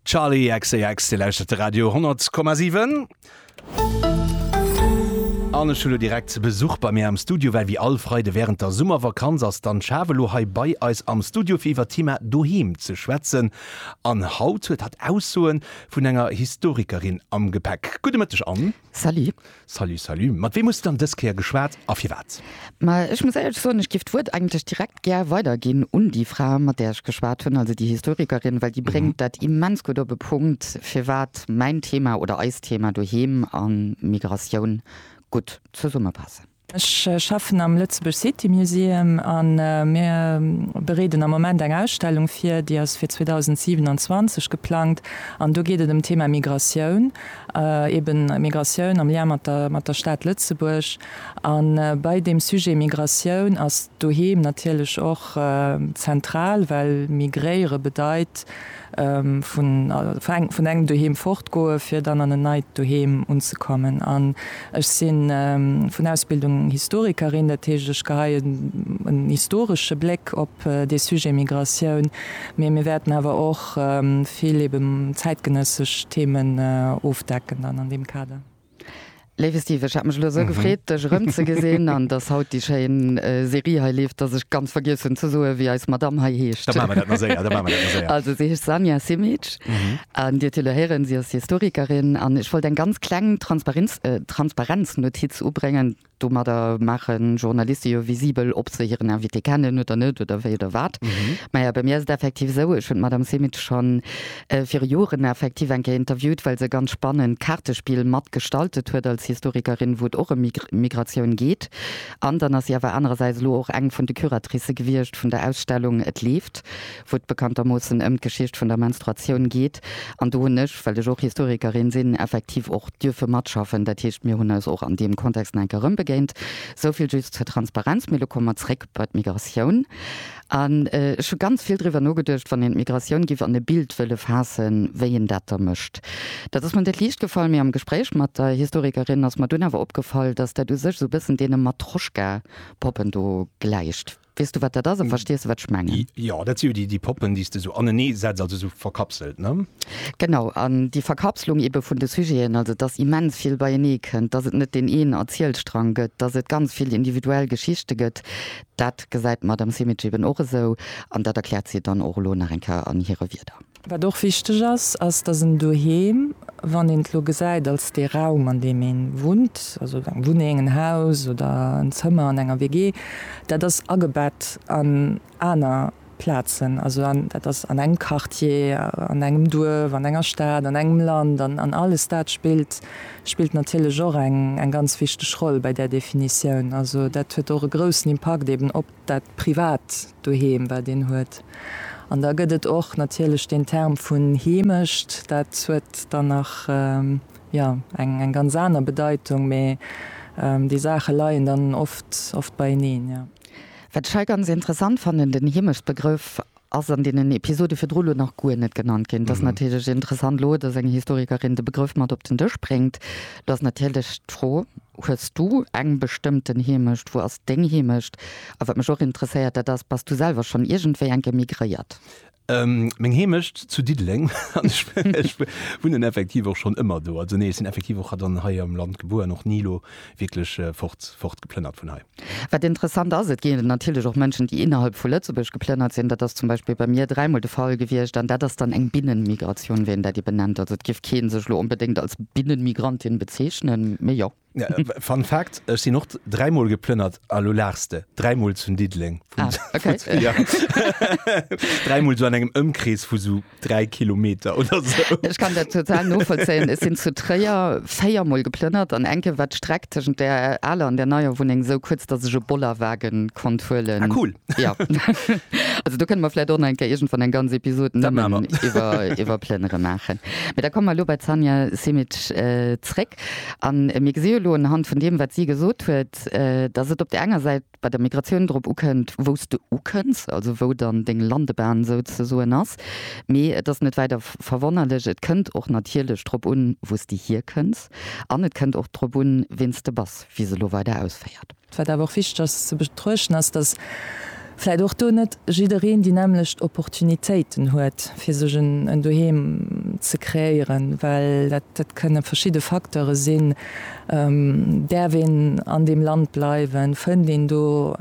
Charli XCX, Dir lauschtert de Radio 10,7. An ech hu lo direkt Besuch bei mir am Studio, well wéi all Freide während der Summervakanz ass d'Anne Schaaf elo hei bei eis am Studio fir iwwer d'Thema Doheem ze schwätzen. An haut huet hatt Aussoe vun enger Historikerin am Gepäck. Gudde Mëtteg, Anne. Salut. Salut, salut. Mat weem hues de dann dës Kéier geschwat a firwat? Ma ech muss éierlech soen, ech giff d'Wuert eigentlech direkt gär weiderginn un déi Fra, mat där ech geschwat hunn, also déi Historikerin, well déi bréngt dat immens gutt op e Punkt, firwat mäin Thema oder eist Thema doheem a Migratioun gutt zesummepassen. Ech schaffen am Lëtzebuerg City Museum a mir bereeden am Moment eng Ausstellung vir, déi ass fir 2027 geplangt an do geet et ëm d'Thema Migratioun, eben Migratioun am Lien mat der Stad Lëtzebuerg. A bei deem Sujet Migratioun ass d'Doheem natierlech och zentral, well migréiere bedeit, vun engem Doheem fortgoe fir dann an en neit Doheem unzekommen. An ech si vun Ausbildung Historikerin, dat heescht ech geheien en historesche Bléck op dee Sujet Migratioun, mee mir wäerten awer och vill eben zäitgenëssesch Themen ofdecken dann an deem Kader. Léiwe Steve, ech hat mech elo esou gefreet, dech erëm ze gesinn an dass haut déi schéin Serie hei leeft, dass ech ganz vergiess hunn ze soen, wéi eis Madamm hei heescht. Da maache mer dat nach séier, da maache mer dat nach séier. Also si heescht Sanja Simic an Dir hutt elo héieren, si ass Historikerin an ech wollt eng ganz kleng Transparenz, Transparenznotiz ubréngen, Domadder maachen Journaliste jo visibel, ob se hiren Invité kennen oder net oder wéi oder wat. Maja, bei mir ass et effektiv esou, ech hunn d'Madame Simic schonn viru Joren effektiv eng Kéier interviewt, well se e ganz spannend Kaartespill mat gestaltet huet als Historikerin, wou et och ëm Migratioun geet. An dann ass si awer anerersäits elo och eng vun de Curatricë gewiescht vun der Ausstellung Et leeft. wou et bekanntermoossen ëm d'Geschicht vun der Menstruatioun geet, an do hunn ech, well ech och Historikerin sinn, effektiv och dierfe matschaffen. Dat heescht, mir hunn eis och an deem Kontext nach eng Kéier erëmbegéint. Esou vill just zur Transparenz. Mee elo komme mer zréck bei d'Migratioun. An ech hu ganz vill driwwer nogeduecht, wann een d'Migratioun giff an e Bild wëlle faassen, wéi een dat da mécht. Dat ass mer net liicht gefall, mee am Gespréich mat der Historikerin ass mer dunn awer opgefall, dass dat u sech esou e bëssen deene Matroschka-Poppen do gläicht. Weess du wat dat ass a verstees du wat ech mengen? Jo, dat si jo déi Poppen, déi s de esou anenee setz, also esou verkapselt, ne? Genau, an déi Verkapslung ebe vun de Sujeten, also dass immens vill beienee kënnt, dass et net deen een Erzielstrang gëtt, dass et ganz vill individuell Geschichte gëtt, dat gesäit d'Madame Simic eben och esou an dat erkläert si dann och elo nach eng Kéier an hire Wieder. Wat och wichteg ass, ass, dass en Doheem, wann een et elo gesäit als dee Raum, an deem ee wunnt, also eng Wunneng, en Haus oder en Zëmmer an enger WG, dat ass agebett an aner Plazen, also an dat ass an engem Quartier, an engem Duerf, an enger Stad, an engem Land, an alles dat spillt spillt natierlech och eng ganz wichteg Roll bei där Definitioun. Also dat huet och e groussen Impakt eeben op. dat privat Doheem, wat een huet. An da gëtt et och natierlech deen Term vun Heemecht, dat huet dann nach, jo, eng ganz aner Bedeitung, mee déi Saache leien dann oft beieneen, jo. Wat ech hei ganz interessant fannen, den Heemechtbegrëff Ass an deenen Episode virdru lo nach guer net genannt ginn. Et ass natierlech interessant lo, dass eng Historikerin de Begrëff mat op den Dësch bréngt. Lo ass natierlech d'Fro, Hues du eng bestëmmten Heemecht? Wou ass deng Heemecht? A wat mech och interesséiert, dat ass, Bass du selwer schonn iergendwéi eng Kéier migréiert? Meng Heemecht zu Diddeleng. Ech wunnen effektiv och schonn ëmmer do. Also nee, ech sinn effektiv och hei am Land gebuer an och ni lo wierklech fort, fortgeplënnert vun hei. Wat interessant ass, et ginn natierlech och Mënschen, déi innerhalb vu Lëtzebuerg geplënnert sinn. Dat ass zum Beispill bei mir dräimol de Fall gewiescht. An dat ass dann eng Binnenmigratioun, wéi een dat eben nennt. Also et géif kee sech elo onbedéngt als Binnenmigrantin bezeechnen, mee jo. Fun Fact, Ech sinn och dräimol geplënnert a lo laachs de. Dräimol zu Diddeleng. Ah, okay. Dräimol esou an engem Ëmkrees vu esou 3 Kilometer oder esou. Ech kann dat total novollzéien. Ech sinn zu Tréier véier Mol geplënnert an eng Kéier war d'Streck tëschent der aler an der neier Wunneng esou kuerz, datt ech e Bollerwagen konnt huelen. Ah cool. Jo. Also do kënne mer vläit och nach eng Kéier iergendwann eng ganz Episod nëmmen iwwer iwwer Plënnere maachen. Mee da komme mer elo bei d'Sanja Simic zréck. An mir gesi jo elo unhand vun deem wat si gesot huet, datt et op der enger Säit, bei der Migratioun drop ukënnt, wou s de ukënns, also wou dann deng Landebahn souzesoen ass, mee et ass net wäider verwonnerlech. Et kënnt och natierlech drop un, wou s de hierkënns, an et kënnt och drop un, wien s de bass, wéi se elo weider ausféiert. Wat awer och wichteg ass ze betruechten, ass, dass vläicht och do net jiddereen déi nämmlecht Opportunitéiten huet, fir sech en Doheem ze kreéieren, well dat kënne verschidde Facteure sinn, Däerf een an deem Land bleiwen? Fënnt een do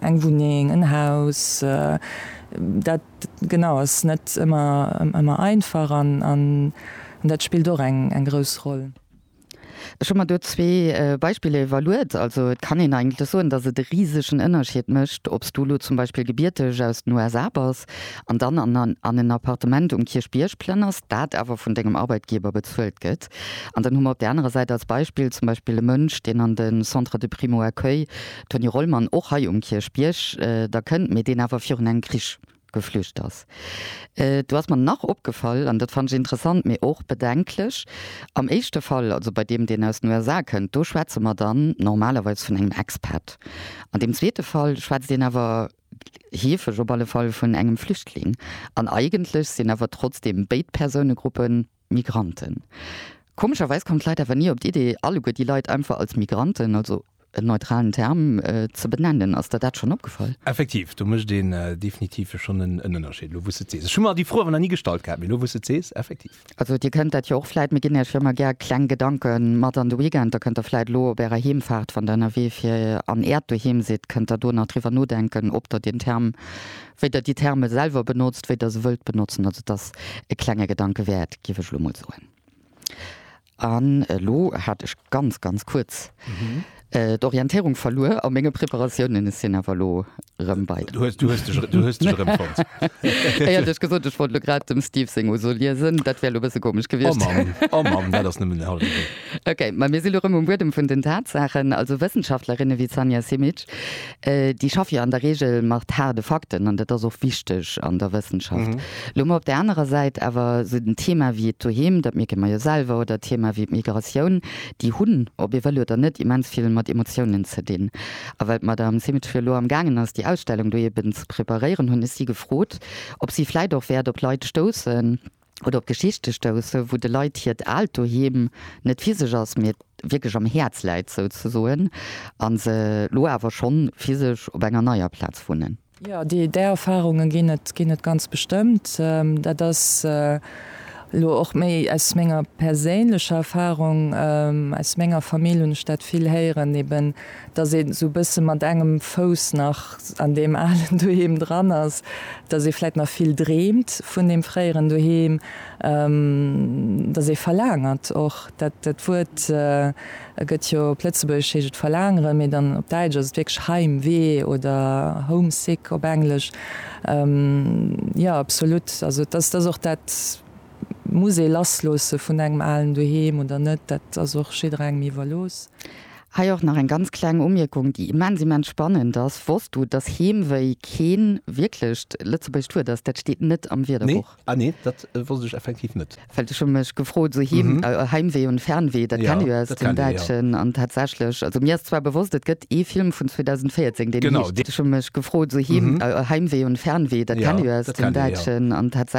eng Wunneng, en Haus? Dat genau ass net ëmmer einfach an dat spillt och eng grouss Roll. Ech hu mer do zwee Beispiller iwwerluet. Also et kann een eigentlech soen, datt et e risegen Ënnerschied mécht, ob s du elo zum Beispill gebierteg aus den USA bass an dann an en Appartement um Kierchbierg plënners, dat awer vun dengem Arbeitgeber bezuelt gëtt, An dann hu mer op där anerer Säit als Beispill zum Beispill e Mënsch, deen an de Centre de primo-accueil Tony Rollmann, och hei um Kierchbierg, da kënnt, mee deen awer virun engem Krich geflücht ass. Do ass mer nach opgefall, an dat fannt ech interessant, mee och bedenklech, Am éischte Fall, also bei deem, deen aus den USA kënnt, do schwätze mer dann normalerweis vun engem Expat. An deem zweete Fall schwätzt een awer, heefeg op alle Fall, vun engem Flüchtling. An eigentlech sinn awer trotzdeem béid Persounegruppen Migranten. Komescherweis kommen d'Leit awer ni op d'Idee, alleguer déi Leit einfach als Migranten, also en neutralen Term, ze benennen. Ass der dat schonn opgefall? Effektiv, do mécht een definitiv schonn en Ënnerscheed, elo wou s de et sees. Ech hu mer déi Fro awer nach ni gestallt gehat, mee elo wou s de et sees, effektiv. Also Dir kënnt dat jo och vläit, mir ginn Iech jo ëmmer gär kleng Gedanke mat an de Weekend. Da kënnt Der vläit elo op Ärer Heemfaart, wann Der ënnerwee fir an Äert Doheem sidd, kënnt Der do nach driwwer nodenken, ob Der deen Term Wéi Der déi Terme selwer benotzt, wéi Der se wëllt benotzen, also et ass e klenge Gedanke wäert, géif ech elo mol soen. An elo hat ech ganz, ganz kuerz d'Orientéierung verluer a menge Preparatiounen. Ech sinn awer elo erëm bei der. Du hues, du hues dech, du hues dech erëmfonnt. Ech hat lech gesot, ech wollt elo grad dem Steve seng Ausso liesen. Dat wär elo e bësse komesch Oh gewiescht. Mann, oh Mann, dat ass nëmmen den hallwe Wee. Okay, ma mir si elo erëm um Buedem vun den Tatsaachen. Also Wëssenschaftlerinne wéi d'Sanja Simic, Déi schaffe jo an der Reegel mat haarde Fakten an dat ass och wichteg an der Wëssenschaft. Elo mol op där anerer Säit awer esou en Thema wéi et doheem, dat mierke mer jo selwer, oder Thema wéi d'Migratioun, déi hunn, ob ee wëll oder net, immens vill mat Emotiounen ze dinn. A well d'Madame Simic jo elo am gaangen ass, déi Ausstellung do eben ze preparéieren, hunn ech si gefrot, ob si vläit och wäert op Leit stoussen, oder op Geschichte stousse wou de Leit hiert aalt Doheem net physesch ass, mee wierklech am Häerz läit souzesoen, a se lo awer schonn physesch op enger neier Plaz wunnen. Jo, déi Erfarunge ginn et, ginn et ganz bestëmmt. Dat ass elo och méi aus menger perséinlecher Erfarung. Aus menger Famill hunn ech dat vill héieren eben, dass een esou e bësse mat engem Fouss nach an deem alen Doheem dran ass, dass ee vläit nach vill dreemt vun deem fréieren Doheem, dass ee verlaangert och, dat dat Wuert gëtt jo, op Lëtzebuergesch heescht et verlaangeren, mee dann op Däitsch ass et wierklech Heimwee oder homesick op Englesch. Jo, absolut, also dass dass och dat muss ee lassloosse vun engem alen Doheem oder net, dat ass och jidderengem iwwerlooss. Hei och nach eng ganz kleng Umierkung, déi immens, immens spannend ass, Wosst du, dass Heemwéi keen wierklecht lëtzebuergescht Wuert ass? Dat steet net am Wierderbuch. Nee, ah nee, dat wosst ech effektiv net. Well ech hu mech gefrot, sou Heem, Heimwee und Fernweh, dat kenne jo aus dem Däitschen. An tatsächlech, also mir ass zwar bewosst, et gëtt ee Film vun 2014, deen heescht. Ech hu mech gefrot, sou Heem, Heimwee und Fernweh, dat kenne jo aus dem Däitschen. An tatsächlech.